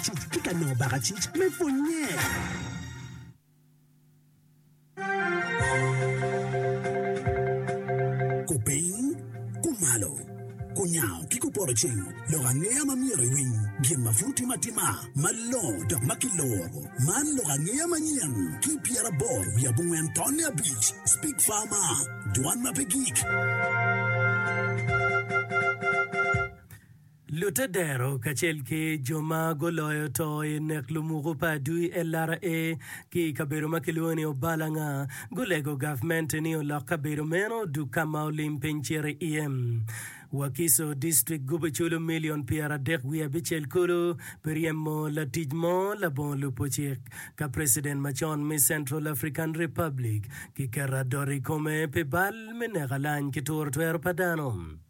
Cuk ki ka nongo bakacic me pwonnye. cing lok angeya ma myero iwiny gin ma pud tim atima malongo dok ma kiloro man lok angeya manyen ki pyerabor wi abongwen tonne abic speak farma dwan ma pe gik Lute dero kacel ki jo ma guloyo to i nek lumuku pa adui LRA ki i kabedo ma kilwongo ni Obalanga gulego gavmente ni olok kabedo meno odug ka ma olim piny ciro iye. Wakiso District gubo culu milion pyeradek wiye abicel kulu pi ryemo latic mo labongo lubo cik ka president macon me Central African Republic ki keto adot i kome pi bal me neko alany ki turo twero pa dano.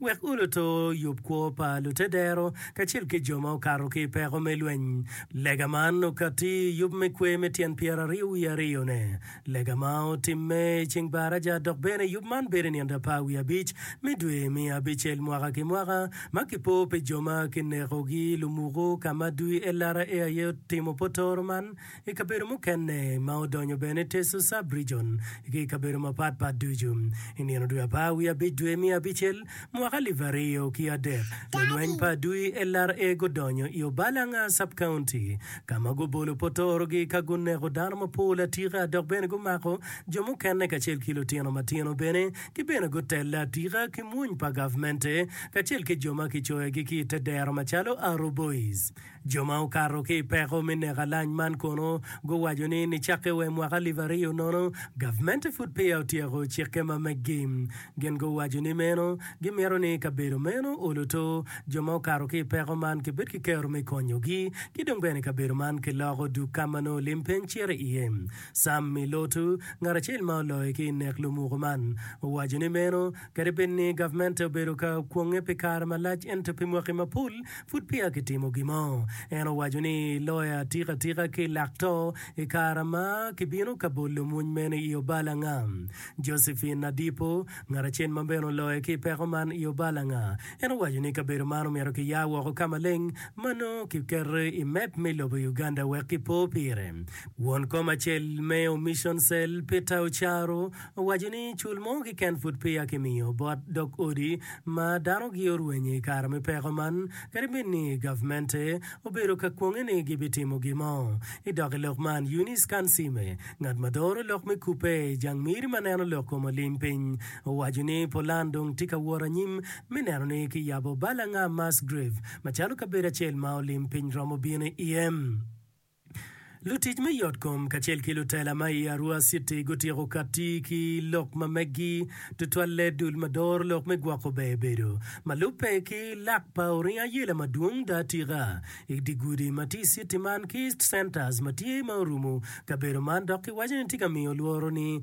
Wek uluto yub kwo pa lutedero kacel ki jo ma okato ki i peko me lweny. Lega man okatti i yub me kwer me tyen pyeraryo wiye aryone. Lega ma otimme i ceng baraja dok bene yub man bedo i nino apar wiye abic me dwe me abicel mwaka ki mwaka ma kipo pi jo ma kinekogi i lumuku ka ma dwi-elara aye otimo potoro man I kabedo mukene ma odonyo bene Teso Sub-Region ki i kabedo mapat pat ducu. I nino dwe apar wiye abic dwe me abicel mwaka alip aryo ki adek, lulweny pa adui LRA gudonyo i Obalanga Sub-County ka ma gubolo potorogi ka guneko dano mapol atika dok bene gumako jo mukene kacel ki lutino matino bene ki bene gutelle atika ki mwony pa gavmente kacel ki jo ma kicoyogi ki i te dero macalo Arrow Boys. Jo ma okato ki i peko me neko alany man kono guwaco ni nicakke wa i mwaka alip aryo nono, gavmente pud peya otyeko cikke ma meggi. Gin guwaco ni meno gimito ni kabedo meno oluto, jo ma okato ki i peko man kibed ki kero me konyogi, ki dong bene kabedo man kiloko duk ka ma nongo lim piny cito iye. Sam Milotu, ngat acel ma oloyo ki i nek lumuku man, owaco ni meno Kadi bed ni gavmente obedo ka kwonge pi kare malac ento pi mwaki mapol pud peya kitimo gimo. En owaco ni loya tiko atika ki lak to i kare ma kibino ka bolo mony meno i Obalanga. Josephine Nadipo, ngat acel ma bene oloyo ki i peko man i Obalanga, en owaco ni kabedo man omyero kiya woko ka maleng ma nongo kiketo i mep me lobo Uganda wek kipo pire. Won kom acel me Omission Cell, Peter Ocharo, owaco ni cul mo kiken pud peya kimiyo bot dog odi ma dano gi orwenye i kare me peko man kadi bed ni gavmente obedo ka kwonge ni gibitimo gin mo. I dok i lok man, Eunice Kansiime, ngat ma doro lok me kubbe i jang miri ma neno lok kom olim piny, owaco ni pulan dong tye ka wot anyim me neno ni kiyabo Balang'a Mass Grave macalo kabedo acel ma olim piny romo bino iye. Lutic me yotkom kacel ki lutela ma i Arua citi gutyeko kati ki lok ma meggi, tutwalle dul ma doro lok me gwoko ber bedo. Ma lubbe ki lak pa oringo ayela madwong da tika i di gudi ma tye i citi man ki East Centers ma tye ma orumo kabedo man dok ki waco ni tye ka miyo lworo ni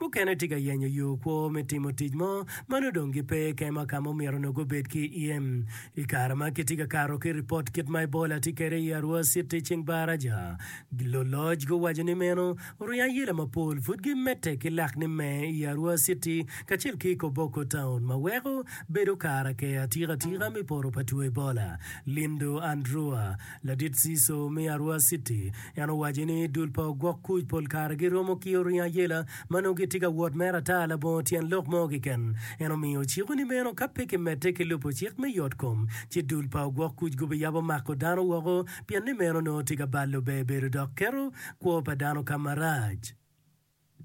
Mukene tye ka yenyo yo kwo me timo tic mo ma nongo dong gipe kema ka ma omyero onongo gubed ki iye. I kare ma kitye ka kato ki ripot kit ma Ebola tye kwede i Arua City i ceng Baraja, luloc guwaco ni meno oriyo ayela mapol pud gimedde ki lak ni me i Arua City kacel ki i Koboko Town ma weko bedo kare aker atika atika me poto pa two Ebola. Lindo Andrua. Ladit Ziso me Arua City en owaco ni dul pa ogwok kuc pol kare giromo ki oringo ayela ma nongo gitye ka wot mere ata labongo tyen lok mo keken. En omiyo ociko ni meno ka pe kimedde ki lubo cik me yotkom ci dul pa ogwok kuc gubiyabo mako dano woko pienni meno nongo tye ka balo bebedo dok keto kwo pa dano ka marac.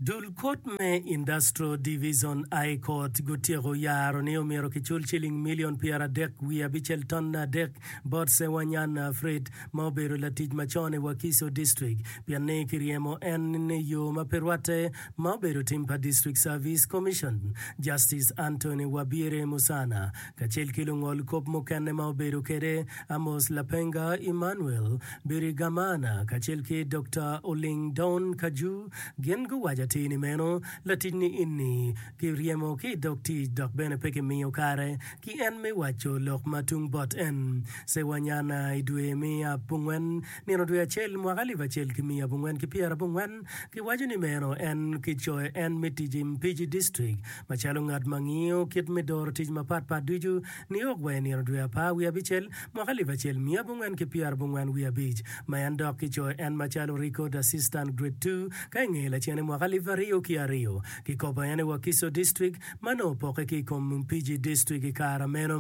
Dul kut me Industrial Division I Court gutyeko yaro ni omyero kicul ciling milion pyeradek wiye abicel tonne adek bot Sewanyan Fred ma obedo latic macon i Wakiso District pien ni kiryemo en i yo ma pe rwatte ma obedo tim pa District Service Commission. Justice Anthony Wabire Musana Kacel ki lungol kop mukene ma obedo kwede, Amos Lapenga, Emmanuel Birigamana, kacel ki Dokta Oling Don Kaju, gin guwaco atir ni meno, laticni enni kiryemo ki i dog tic dok bene pe kimiyo kare ki en me waco lok ma tung bot en. Sewanyana i dwe me abongwen Nino dwe acel, mwaka alip acel ki miya abongwen ki pyera abongwen, giwaco ni meno en kicoyo en me tic i Mpigi District macalo ngat ma ngiyo kit me doro tic mapat pat ducu, New York wa i nino dwe apar wiye abicel, mwaka alip acel miya abongwen ki pyera abongwen wiye abic, ma en dok kicoyo en macalo Record Assistant Grade Two ka i nge lacene mwaka alip aryo ki aryo. Kikopo en i Wakiso District. ma nongo opokke ki i kom PG distrik i kare meno.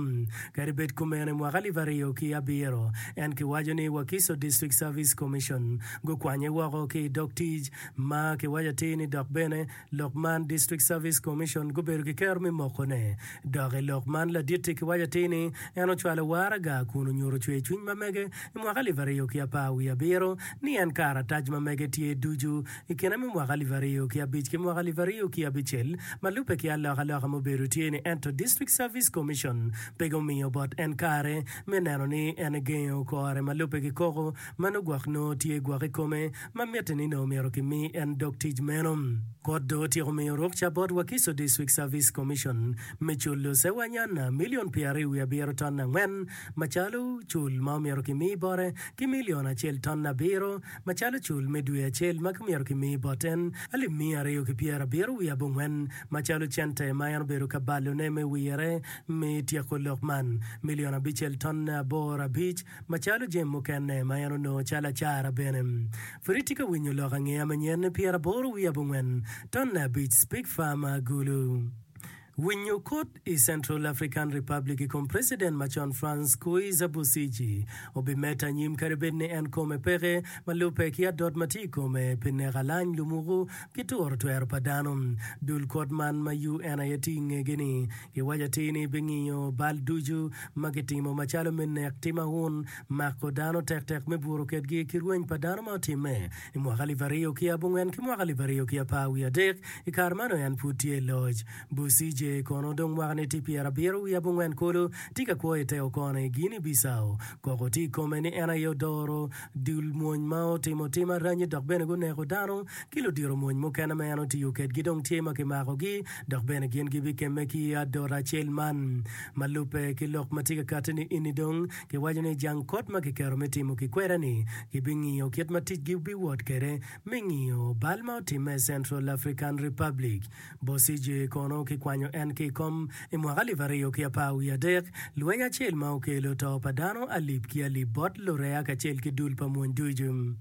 Kadi bed kumeno, i mwaka alip aryo ki abiro, en kiwaco ni Wakiso District Service Commission gukwanye woko ki i dog tic, ma kiwaco atir ni dok bene lok man, District Service Commission, gubedo ki kero me mokone. Dok i lok man ladit-ti kiwaco atir ni en ocwalo waraga kun onyuto cwercwiny ma mege i mwaka alip aryo ki apar wiye abiro ni en karatac ma mege tye ducu I kine me mwaka alip aryo ki abic ki mwaka alip aryo ki abicel, ma lubbe ki alokaloka mubedo tye ni ento District Service Commission peke omiyo bot en kare me neno ni en egengo kore ma lubbe ki koko ma nongo gwok nongo tye gwok i kome ma mitte ni nongo myero ki mi en dog tic meno. Kot dong otyeko miyo rukca bot Wakiso District Service Commission me culo Sewanyana milion pyeraryo wiye abiro ton angwen macalo cul ma omyero ki mi bote ki milion acel ton abiro macalo cul me dwe acel ma kimyero kimi bot en alip miya aryo ki pyera abiro wiye abongwen, macalo cente ma en obedo ka balone me wirre me tyeko lok man, milion abicel tonne aboro abic, macalo jami mukene ma en onongo calo acara bene. Pud itye ka winyo lok angeya manyen pyeraboro wiye abongwen tonne abic, Speke Farmer, Gulu. Winyo kut i Central African Republic i kom president macon Frans Kuiza Busiji obimedde anyim kadi bed ni en kome peke ma lubbe ki adot ma tye i kome pi neko alany lumuku ki turo twero pa dano. Dul kot man ma UN aye tye i ngegi ni giwaco atir ni bingiyo bal ducu ma gitimo macalo me nek, tim aun, mako dano tektek me buru kedgi ki rweny pa dano ma otimme I mwaka alip aryo ki abongwen ki mwaka alip aryo ki apar wiye adek, i kare meno en pud tye i loc. Busije kono dong mwakane tye pyerabiro wiye abongwen kulu tye ka kwo i te okono i Guinea Bissau. Koko tye i kome ni en aye odoro dul mwony ma otimo tim aranyi dok bene guneko dano ki ludiro mwony mukene ma en otiyo kedgi dong tye ma kimakogi dok bene gin gibikemme ki i adot acel man ma lubbe ki lok ma tye ka katti ni eni dong Kiwaco ni jang kot ma kiketo me timo kikwera-ni gibingiyo kit ma ticgi biwot kwede me ngiyo bal ma otimme i Central African Republic. Bosigye kono kikwanyo en ki i kom i mwaka alip aryo ki apar wiye adek, lweny acel ma okelo to pa dano alip ki alip bot lureya kacel ki dul pa mony ducu.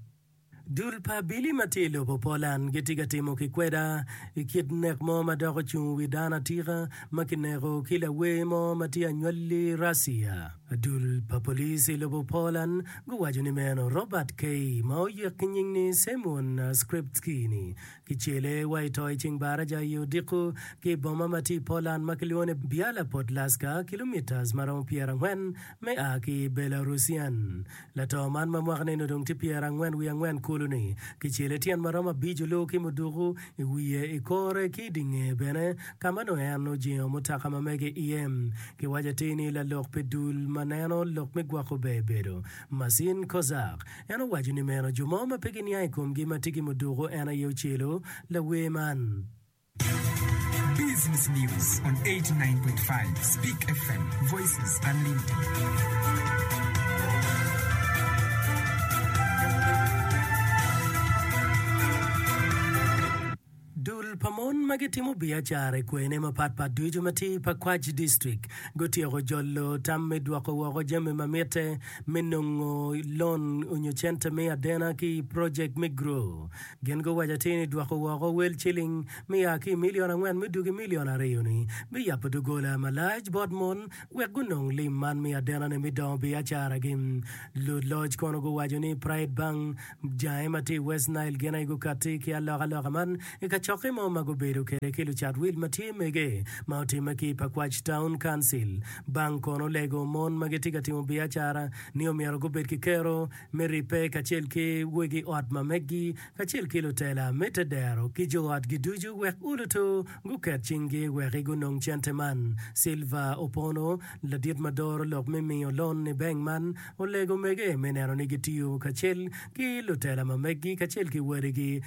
Dul pa abili ma tye i lobo Poland gitye ka timo kikweda i kit nek mo ma dok ocung wi dano atika ma kineko ki lawer mo ma tye anywali Russia. Dul pa police i lobo Poland guwaco ni meno Robert K. ma oyek ki nying ni Semyon Skrzybski ni kicele wa i to i ceng baraja i odiko ki i boma ma tye i Poland ma kilwongo ni Biala Podlaska kilometres maromo pyerangwen me a ki Belarusian Lato man ma mwaka neni odong tye pyerangwen wiye angwen kulu ni, kicele tyen ma romo abico luu ki muduku i wiye, i kore ki i dye ngeye bene, ka ma nongo en ojengo mutoka ma mege iye. Kiwaco atir ni lalok pi dul ma neno lok me gwoko ber bedo Marcin Kozak. En owaco ni meno jo mo ma pe giniang i komgi ma tye ki muduku en aye ocelo lawer man. Business news on 89.5 Speak FM, voices unlimited. Dul pa mon ma gitimo biacara i kwene mapatpat ducu ma tye i Pakwach District gutyeko jolo tam me dwoko woko jami ma mitte me nongo lon onyo cente me adena ki i project me Grow. Gin guwaco atir ni dwoko woko wel ciling ma ya ki i milion angwen me dwogo i milion aryo-ni biyabo doggola malac bot mon wek gunong lim man me adenane me dongo biacaragi. Luloc kono guwaco ni Pride Bank jange ma tye i West Nile gin aye gukatti ki alokaloka man i kacokke mo ma gubedo kwede ki lucat wil ma tye mege ma otimme ki i Pakwach Town Council. Bank kono olego mon ma gitye ka timo biacara ni omyero gubed ki kero me ribbe kacel ki wegi ot ma meggi, kacel ki lutela me te dero ki jo otgi ducu wek ulutu guket cinggi wek i gunong cente man. Silva Opono, ladit ma doro lok me miyo lon i bank man, olego mege me neno ni gitiyo kacel ki lutela ma meggi kacel ki wadigi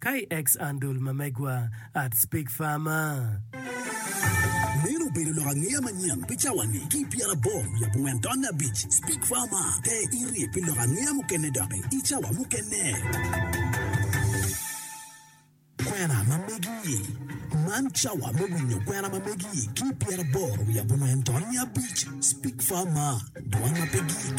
KX Andol ma megwa at Speak Farmer. Meno obedo lok angeya manyen pi cawani ki pyerabor wiye abongwen taonne abic. Speak Farmer, te iri pi lok angeya mukene doki i cawa mukene. Kwena ma megi. Man cawa me winyo kwena ma megi ki pyerabor wiye abongwen taonne abic. Speak Farmer, dwan ma pe gik.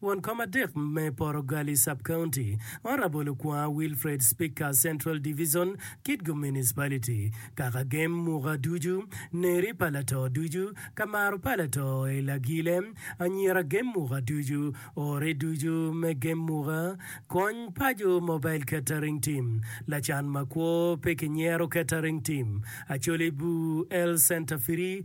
Won kom adek me Porogali Sub-County, Orabolo Kwaa Wilfred Speaker Central Divison, Kitgum Municipality, Kaka gem muka ducu, neri pa lato ducu, ka maro pa lato i lagile, anyira gem muka ducu, ore ducu me gem muka, kony paco Mobile Catering Team, lacan makwo pe kinyero Catering Team, Acholi Bur Health Centre Free,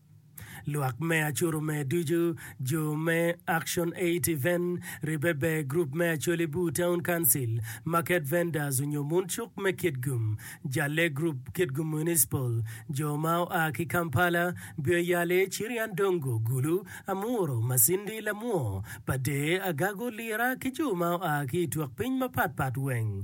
Lwak me Acuru me Ducu, Jo me Action Aid Event, Ribbe Ber Group me Acholi Bur Town Council, Market Vendors onyo Mun Cuk me Kitgum, Jalle Group, Kitgum Municipal, Jo ma oa ki Kampala, Bio Yale, Chirian Dongo, Gulu, Amuro, Masindi, Lamwo, Pader, Agago, Lira ki jo ma oa ki i twok piny mapat pat weng.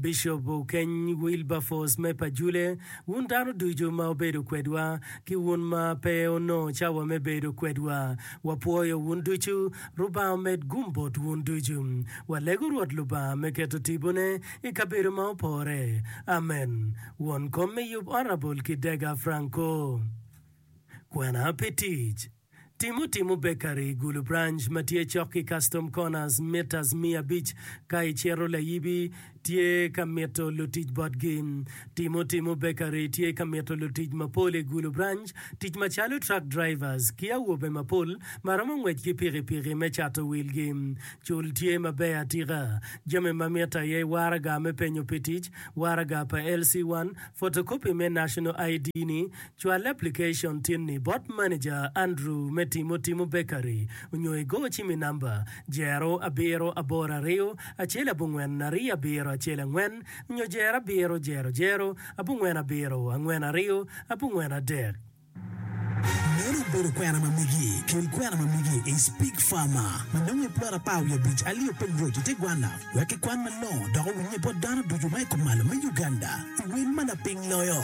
Bishop Okeny Wilberforce me Pajule, wun dano ducu ma wubedo kwedwa, ki wun ma pe wunongo cawa me bedo kwedwa, wapwoyo wun ducu. Rubanga omed gum bot wun ducu. Walego Rwot Lubanga me keto tibone i kabedo ma opore. Amen. Won kom me yub Honourable Kidega Franco. Kwena pi tic. Timo timo bekari i gulu branch ma tye cok ki Custom Corners mitas miya abic ka icito layibi tye ka mito lutic botgi. Timo timo bekari tye ka mito lutic mapol i gulu branch tic macalo truck drivers ki awobe mapol ma romo ngwec ki pikipiki me cato wilgi. Cul tye maber atika. Jami ma mitte aye waraga me penyo pi tic, waraga pa LC1, photocopy me National ID ni, Cwal aplikacon tin-ni bot maneja Andrew me Timo Timo Bakery onyo igo ci mi namba, Jero abiro aboro ariyo acel abongwen ariyo abiro acel angwen nyo Jero abiro jero jero abongwen abiro angwen ariyo abongwen adek. Meno obedo kwena ma migi. Kel kwena ma migi i Speak Farmer ma nongo i plot apar wiye abic alyo openy roc i tegwanna wek kikwan malongo dok owinye bot dano ducu ma i kom malo me Uganda i wel ma lapiny loyo.